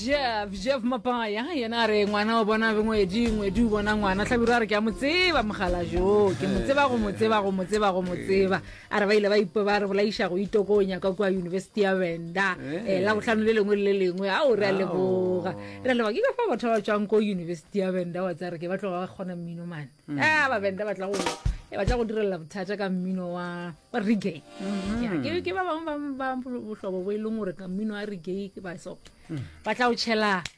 jeff jeff mapaya yena a re ngwana o bona ngwedi ngwedi o bona ngwana tlhabiro a re ke a mo tseba mogala jo ke mo tseba go mo tseba go mo tseba go mo tseba a re ba ile ba ipo ba re bolaiša go itokonya kwa kua yunibesithi ya benda eh, la botlhano le lengwe le le lengwe a o re a leboga re a leboga ke ka fa batho ba ba tswang ko yunibesithi ya benda wa tsaya re ke ba tloga ba kgona mmino mane mm. a ah, ba benda ba tla go e batla go direlela bothata ka mmino wa regay mm-hmm. ke ba bangwe ba botlhobo bo e leng gore ka mmino wa regay ke ba so mm. ba tla o tšhela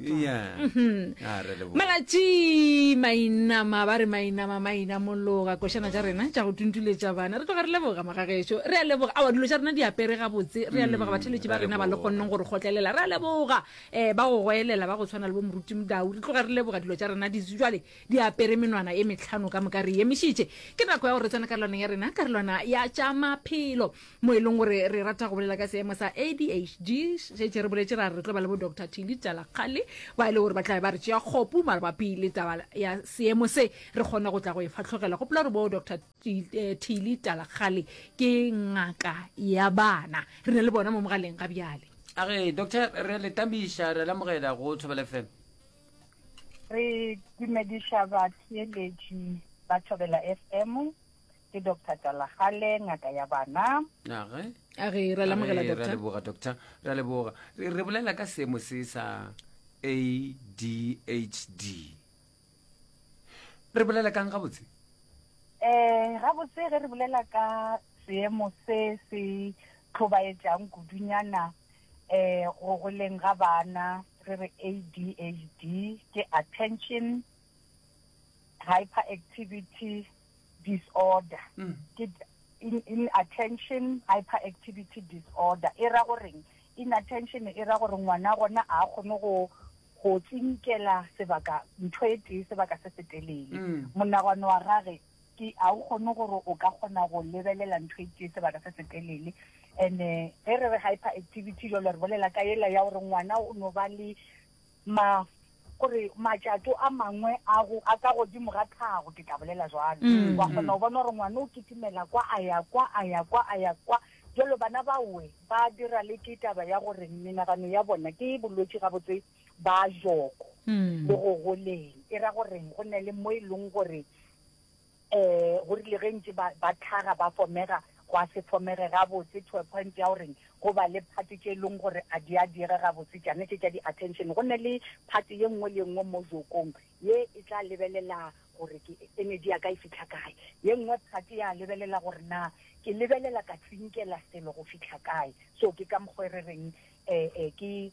Yeah. Ah, re leboga. malatši mainama ba re mainama maina mologa košana tša rena tša go tuntuletša bana re tloga re leboga magagešo re a leboga awa dilo tša rena di apere gabotse re a leboga batheletši ba ra rena ba le leboga. kgonneng gore kgotlelela re a leboga um ba go goelela ba go tshwana le bo moruti modau re tloga re leboga dilo tša rena di jale di apere menwana e metlhano ka moka re emišitše ke nako ya gore re tsene karolwaneng ya rena karolwana ya tša maphelo mo e leng gore re rata go bolela ka seemo sa adhd šetse re boletse ra re tlo ba le bo dr tilly talakgale ba e le gore ba tlabe ba re tšea kgopu mabapi le taba ya seemo se re kgone go tla go e fatlhogela gopola gore bo dr eh, tilly talakgale ke ngaka ya bana re na le bona mo mogaleng ga bjale a re doctor re le tamiša re lamogela go thobele fm re dumediša batheeletši ba thobela fm Ke Doctor Talagale, ngaka ya bana. Age. A re ra lamogela Age, ra doctor. leboga doctor re a leboga re re bolela ka seemo se sa adhd re bolela kang gabotse Eh, gabotse ge re bolela ka seemo se se tlhobaetšang kudunyana eh go goleng ga bana re re ADHD ke attention hyperactivity disorder ke inattention hyperactivity disorder e ra goreng inattention e ra gore ngwana gona a kgone go go tsinkela sebaka ntho e tee sebaka se se telele monagano wa gage ke a o kgone gore o ka kgona go lebelela ntho e tee sebaka se se telele and-e ge re re hyperactivity jalo re bolela ka ela ya gore ngwana o no ba le Ma, go re, matšato a mangwe a go, a ka godimo ga tlhago, ke tla bolela jwalo. Wa kgona go bona gore ngwana o kitimela kwa, a ya kwa, a ya kwa, a ya kwa. Bjalo bana baowe ba dira le ke taba ya gore menagano ya bona ke bolwetši gabotse ba joko le go goleng. E ra goreng go na le mo e leng gore. Ee, go rile ge ntše ba, ba tlhaga, ba fomega, gwa se fomege gabotse to a point ya gore go ba le part tše e leng gore a di a diega gabotse, tšane tše tša di-attention. Go ne le part ye nngwe le ye nngwe mo jokong ye e tla lebelela gore ke, energy ya ka e fihla kae. Ye nngwe part ya lebelela gore na ke lebelela ka tsinkela selo go fihla kae. So ke ka mokgo e re reng um ke.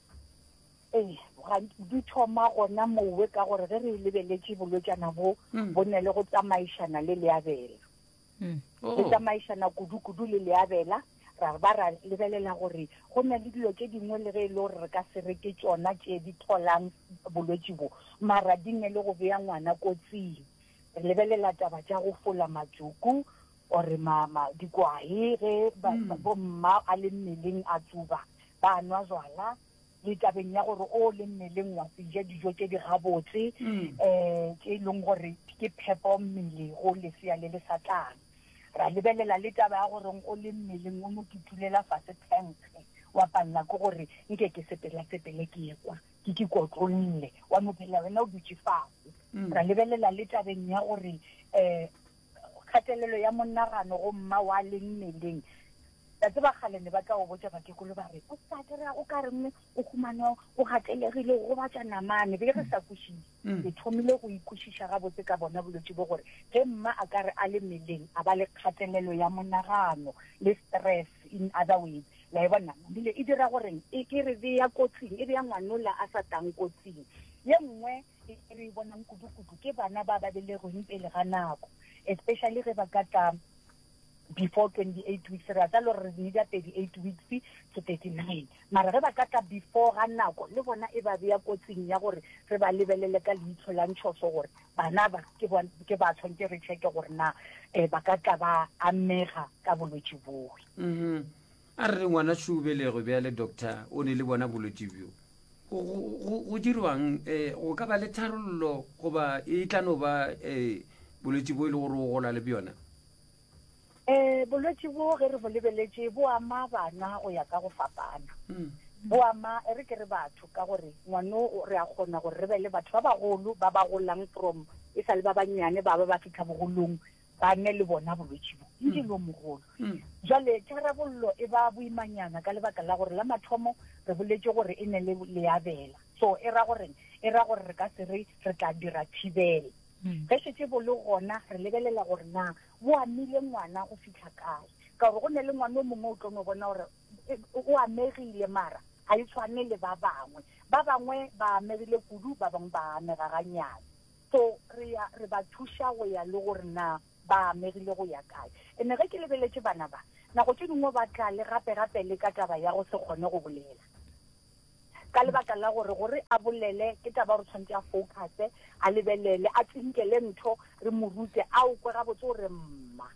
Ee, ga di thoma gona mowe ka gore ge re lebeletše bolwetšana bo mm. bo ne le go tsamaišana le leabela mm. oh. le tsamaišana kudu-kudu le leabela ra ba ra lebelela gore go na le dilo tše dingwe le ge e le gore re ka se reke tsona tše di tholang bolwetši bo mara di ne le go beya ngwana kotsing re lebelela taba tša go fola matsuku O re, Mama, dikwae ge ba, bomma a le mmeleng a tsuba, ba nwa jwala, le tabeng ya gore o le mmeleng wa se ja dijo tše di gabotse, um tše e leng gore ke phepo mmele go lesea le le sa tlang. Ra lebelela le taba ya gore o le mmeleng o no tutulela fase phenkge, wa palela ke gore nke ke sepelasepele ke ye kwa, ke ke kotlolle, wa no phela wena o dutše fase. Ra lebelela le tabeng ya gore um. kgatelelo ya monagano go mma wa leng mmeleng la tseba kgale ne ba tla o botša bakekolo ba re o sa kry-a o ka reng o humane o gatelegile o gobatša namane be re sa kwešiše mm. ke thomile go ikwešiša gabotse ka bona bolwetse bo gore ge mma a ka re a le meleng a ba le kgatelelo ya monagano le stress in other ways la e bona bile e dira goreng e ke re beya kotsing e beya ngwanola a sa tang kotsing ye nngwe E re e bonang kudu-kudu ke bana ba ba belegweng pele ga nako, especially ge ba ka tla before 28 weeks, re a tsa le gore re nida 38 weeks to 39, mara ge ba ka tla before ga nako le bona e ba beya kotsing ya gore re ba lebelele ka leitshlo la ntshoso gore bana ba ke ba ke ba tshwantse re check gore na eh, ba ka tla ba amega ka bolwetši boe. Mm-hmm. A re ngwana Šubelego bjale doctor o ne le bona bolwetši bjo. Go, go, go, go dirwang? E, go ka ba le tharollo goba e tla no ba e, bolwetši bo e le gore o gola le bjona? E, bolwetši bo ge re bo lebeletše bo ama bana go ya ka go fapana. Mm. Bo ama e re ke re batho ka gore ngwano re a kgona gore re be le batho ba bagolo ba ba golang from e sa le ba bannyane ba ba ba fitlha bogolong Ba ne le bona bolwetši bo le di lomogolo. Jwale tharabollo e ba boimanyana ka lebaka la gore la mathomo re boletše gore e ne le leabela. So e ra goreng? E ra gore re ka se re re tla dira thibelo. Ge šetše bo le gona re lebelela gore na bo amile ngwana go fihla kae. Ka gore go ne le ngwana o mongwe o tlo no bona gore o amegile mara ga e tshwane le ba bangwe. Ba bangwe ba amegile kudu, ba bangwe ba amega ganyane. So, re ya, re ba thuša go ya le gore na ba amegile go ya kae. Ene ge ke lebeletše bana ba, nako tše dingwe ba tla le gape gape le ka taba ya go se kgone go bolela. Ka lebaka la gore, gore a bolele, ke taba ya gore o tshwanetse a focuse, a lebelele, a tsinkele ntho, re mo rute, a o kwe gabotse o re mma.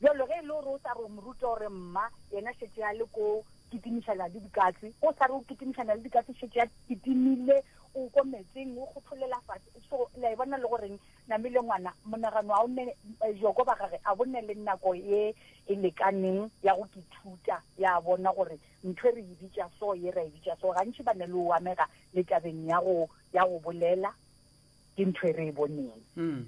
Bjalo ge e le gore o sa re o mo rute o re mma, yena šetše a le ko kitimišana le dikatse. Ge o sa re o kitimišana le dikatse, šetše a kitimile O ko metsing, o gopholela fase. So, le a e bona le go reng, namile ngwana, monagano ao ne, joko ba gage a bo ne le nako e e lekaneng ya go kithuta, ya bona gore ntho e re e bitša so, ye ra e bitša so. Gantši ba ne le o amega le tabeng ya go, ya go bolela ke ntho e re e boneng. Mm.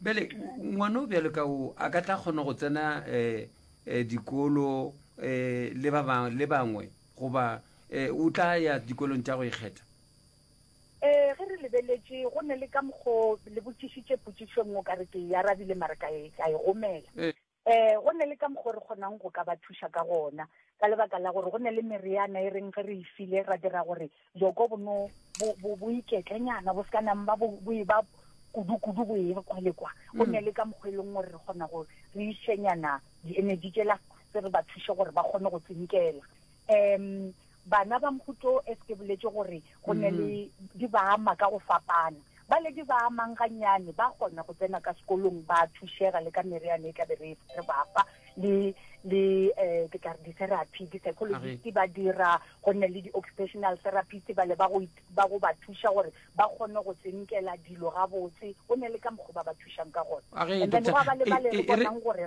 Bjale, ngwana o bjalo ka o, a ka tla kgona go tsena, eh, eh, dikolo, eh, le ba bang, le bangwe? goba um o tla ya dikolong tša go ikgetha? Ee, ge re lebeletše, go ne le ka mokgo le botšišitše potšišo nngwe ka re ke e arabile mare ka e, ka e gomela. Um go ne le ka mokgo re kgonang go ka ba thuša ka gona, ka lebaka la gore go ne le mereana e reng ge re e file ra dira gore Joko bo no bo bo bo iketlenyana bo ska nang ba bo bo e ba kudu kudu bo e kwa le kwa go mm. ne le ka mokgwelong gore re gona go re ishenyana di energy tse la se re ba thushe gore ba gone go tsinkela em bana ba mhuto e se boletse gore go ne le mm. di ba ama ka go fapana Baledi ba a mang gannyane ba kgona go tsena ka sekolong, ba a thušega le ka meriana e tla be re re ba fa, le, le, um, ke tla re di-therapy, di-psychologist ba dira, go nne le di-occupational therapist bale ba go, ba go ba thuša gore ba kgone go tsinkela dilo gabotse, go nne le ka mokgo ba ba thušang ka gone. And then gwa ba le bale re bonang gore.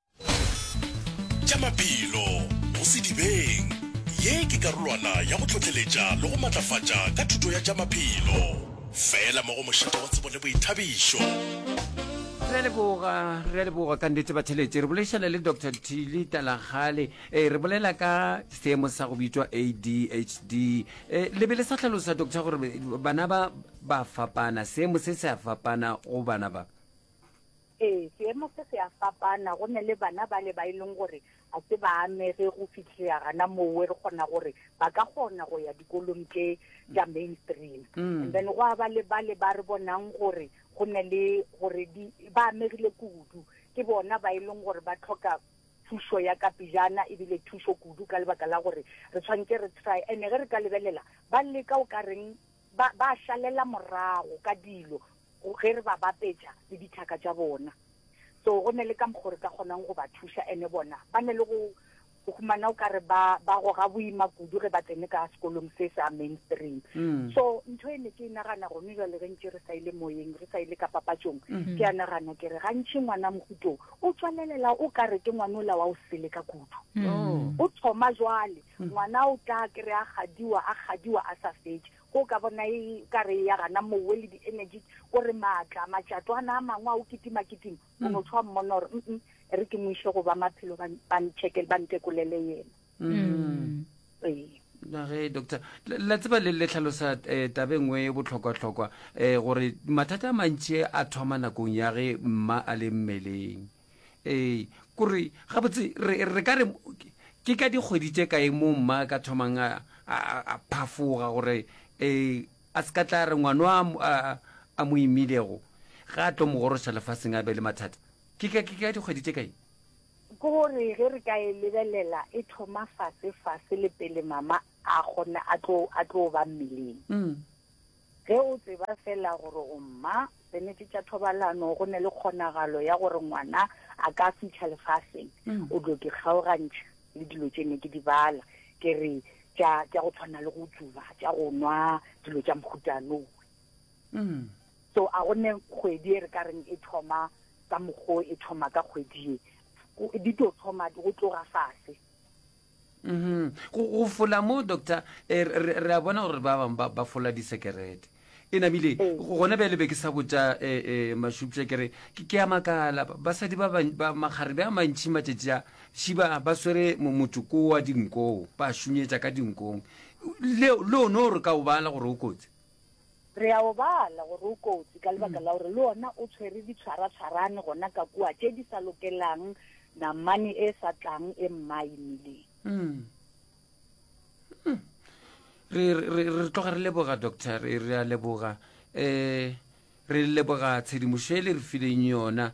Tša maphelo go sedibeng. Ye ke karolwana ya go tlhohleletša le go matlafatša ka thuto ya tša maphelo. Fela mo go mošito wa tsebo le boithabišo. Re a leboga, re a leboga ka nnete batheletši. Re boledišana le Doctor Thili Talagale, eh, re bolela ka seemo sa go bitšwa ADHD. Eh, le be le sa hlalosa doctor gore bana ba ba fapana, seemo se se a fapana go bana ba. Ee, seemo se se a fapana. Go na le bana bale ba e leng gore a se ba amege go fitlhea gana mowe re kgona gore ba ka kgona go ya dikolong tše tša mainstream. Mm. And then go a ba le bale ba re bonang gore go na le gore di ba amegile kudu ke bona ba e leng gore ba tlhoka thušo ya ka pejana ebile thušo kudu ka lebaka la gore re tshwanetse re try ene ge re ka lebelela ba leka o ka reng ba ba šalela morago ka dilo ge re ba bapetša le dithaka tša bona. So go ne le ka mokgo re ka kgonang go ba thuša ene bona ba ne le go go humana o kare ba ba goga boima kudu ge ba tsene ka sekolong se sa mainstream. So ntho e ne ke e nagana gone jwale ge ntše re sa ile moyeng re sa ile ka papatšong ke a nagana ke re gantši ngwana mohuto o tswalelela o kare ke ngwana ola wa o sele ka kudu. O thoma jwale ngwana o tla kry a gadiwa a gadiwa a sa fetše Go ka bona e ka re ya gana mowe le di-energy, ko re maatla, matšatwana a mangwe a o kitimakitima, o no tshwa mmona gore mm e re ke mo ise go ba maphelo ba ba ntšhekele, ba ntekolele yena. Ee. na ge doctor la- la tseba le le tlhalosa eh, tabe nngwe e bohlokwahlokwa eh, gore mathata a mantši a thoma nakong ya ge mma a le mmeleng ee kore gabotse re ka re ke ka dikgwedi tše kae mo mma ka thomang a phafoga gore um a se ka tla re ngwano a mo imilego ga a tlo mo goroša lefaseng a be le mathata ke ka dikgwedi tše kae ke gore ge re ka e lebelela e thoma fase fase le pele mama a kgone a tlo ba mmeleng mm. Ge o tseba feela gore o mma, penete tša thobalano, go ne le kgonagalo ya gore ngwana a ka fihla lefaseng, o tlo di kgaogantšha le dilo tše ne ke di bala, ke re tša, tša go tshwana le go tsuba, tša go nwa dilo tša mohutanowe. So a go ne kgwedi e re ka reng e thoma ka mokgo e thoma ka kgwedi ye, di tlo thoma go tloga fase. Go, go fola moo, doctor, eh, re, re, re a bona gore ba bangwe ba, ba fola disekerete. E namile, Ee. go- gona bjale be ke sa botša eh, eh, Mashupša ke re, ke, ke a makala, ba- basadi ba, ban- ba makgarebe a mantši matšatši a, šiba ba swere mo- motsoko wa dinkoo, ba šunyetša ka dinkong. Leo, le o no re ka o bala gore o kotsi? Re a o bala gore o kotsi ka lebaka la gore le ona o tshwere ditshwaratshwarane gona ka kua tše di sa lokelang namane e sa tlang e mmae mmeleng. Mm. Mm. Re, re, re, re tloga re leboga doctor re, re a leboga um re leboga tshedimošo e le re fileng yona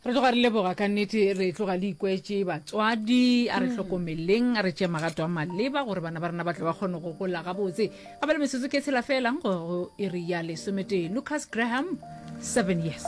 Re tloga re leboga ka nnete, re tloga le ikwetše batswadi. A re hlokomeleng, a re tšee magato a maleba gore bana ba rena ba tle ba kgone go gola gabotse. A ba le metsotso ke tshela felang go iri ya lesometee. Lucas Graham, seven years.